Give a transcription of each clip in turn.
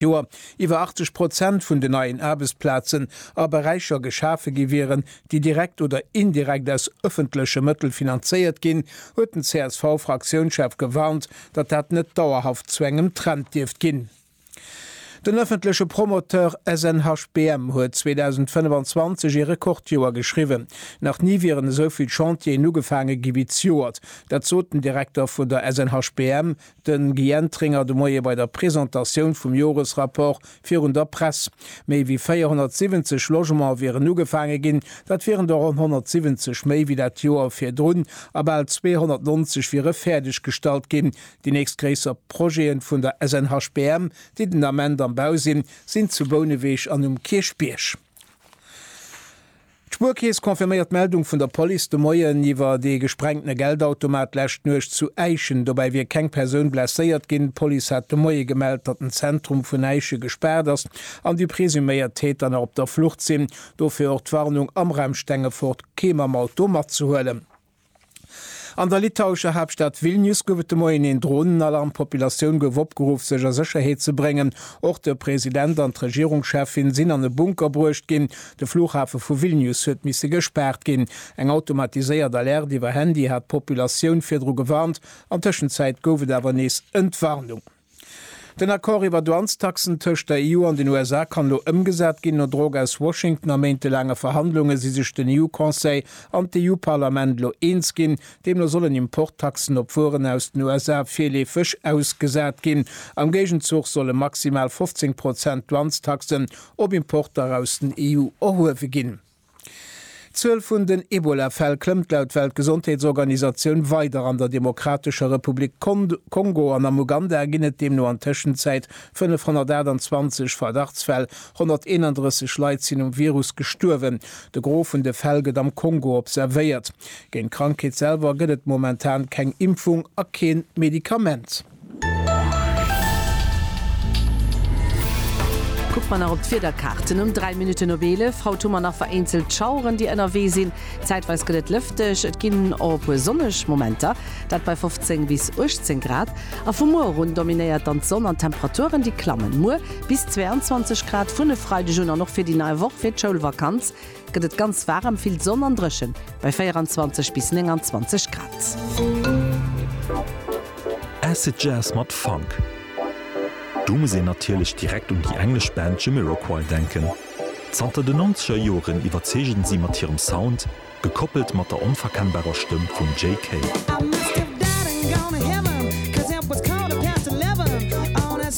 Joer iwwer 80 Prozent vun den neien Aarbechtsplazen a Beräicher geschafe gi wieren, déi direkt oder indirekt aus ëffentleche Mëttel finanzéiert ginn, huet den CSV-Fraktiounschef gewarnt, datt dat net dauerhaft zu engem Trend dierft ginn. Den ëffentleche Promoteur SNHBM huet 2025 ee Rekordjoer geschriwwen. Nach ni wieren esou vill Chantieren ugefaange gi wéi d'Joert. Dat sot den Direkter vun der SNHBM, De Guy Entringer de Moie bei der Presentatioun vum Joresrapport virun der Press. Méi wéi 470 Logementer wieren ugefaange ginn. Dat wieren der ronn 170 méi wéi dat Joer virdrun a bal 290 wiere fäerdeg gestallt ginn. Déi nächst gréisser Projete vun der SNHBM, déi den Ament am Bau sinn, sinn zu Bouneweg an um Kierchbierg. D'Spuerkeess confirméiert d'Meldung vun der Police de Moien iwwer dee gesprengtene Geldautomat d'lescht Nuecht zu Äischen. Dobäi wier keng Persoun blesséiert ginn. D'Police hat de Moie gemellt, datt den Zentrum vun Äische gespaart ass an déi presuméiert Täter nach op der Flucht sinn. Dofir och d'Warnung, am Raum Stengefort kee mam Auto matzehuelen. An der litauescher Haaptstad Vilnius gouf et de Moien een Dronenalarm. D'Populatioun gouf opgeruff, sech a Sécherheet ze bréngen. Och de President an d'Regierungscheffin sinn an e Bunker bruecht ginn. De Flughafe vu Vilnius huet misse gespaart ginn. Eng automatiséiert Alerte iwwer Handy hat d'Populatioun virdru gewarnt. An Tëschenzäit gouf et awer nees Entwarnung. Den Accord iwwer Douanestaxen tëscht der EU an den USA kann elo ëmgesat ginn. No Drock aus Washington a méintelaange Verhandlunge si sech den EU-Conseil an d'EU-Parlament elo eens ginn. Deemno sollen Importtaxen op Wueren aus den USA virleefeg ausgesat ginn. Am Géigenzuch solle maximal 15 Prozent Douanestaxen op Importer aus den EU erhuewe ginn. D'Zuel vun den Ebola-Fäll klëmmt laut Weltgesondheetsorganisatioun weider. An der Demokratescher Republik Kongo an am Uganda ginn et deemno an Tëschenzäit 528 Verdachtsfäll. 131 Leit sinn um Virus gestuerwen. De Gros vun de Fäll gëtt am Kongo observéiert. Géint d'Krankheet selwer gëtt et momentan keng Impfung a kee Medikament. Kucke mer nach op d'Wiederkaarten. Um 3 Minutten op 11 haut hu mer nach vereenzelt Schaueren, déi ënnerwee sinn. Zäitweis gëtt et lëfteg, et ginn och e puer sonneg Momenter, dat bei 15 bis 18 Grad. A vu muer erun dominéiert dann d'Sonn an d'Temperaturen, déi klammen muer bis 22 Grad vun e Freideg un. An och fir déi nei Woch, fir d'Schoulvakanz, gëtt et ganz waarem, vill Sonn an drëchen bei 24 bis 29 Grad. Acid Jazz mat Funk. Do muss een natierlech direkt un déi englesch Band Jamiroquai denken. Zanter de Nonzeger Joren iwwerzeegen si mat hirem Sound, gekoppelt mat der onverkennbarer Stëmm vum Jay Kay.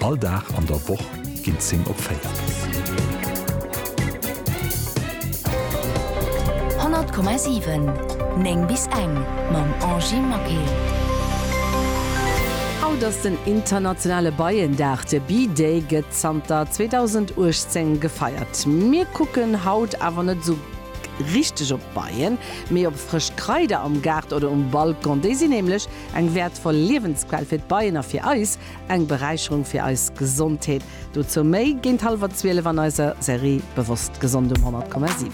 All Dag an der Woch ginn d'Zing op 4. Honnert Komma siwen, néng bis eng mam Angie Maquet. Haut ass den internationale Beiendag, de Bee Day gëtt zanter 2018 gefeiert. Mir kucken haut awer net esou richteg op d'Beien, mee op frësch Kraider am Gaart oder um Balcon. Déi sinn nämlech eng wäertvoll Liewensquell fir d'Beien a fir eis. Eng Beräicherung fir eis Gesondheet. Dozou méi géint hallwer 12 an eiser Serie Bewosst Gesond um 100,7.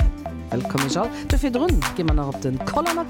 Wëllkomm iech all do virdrun. Gi mer nach op den Koller mat.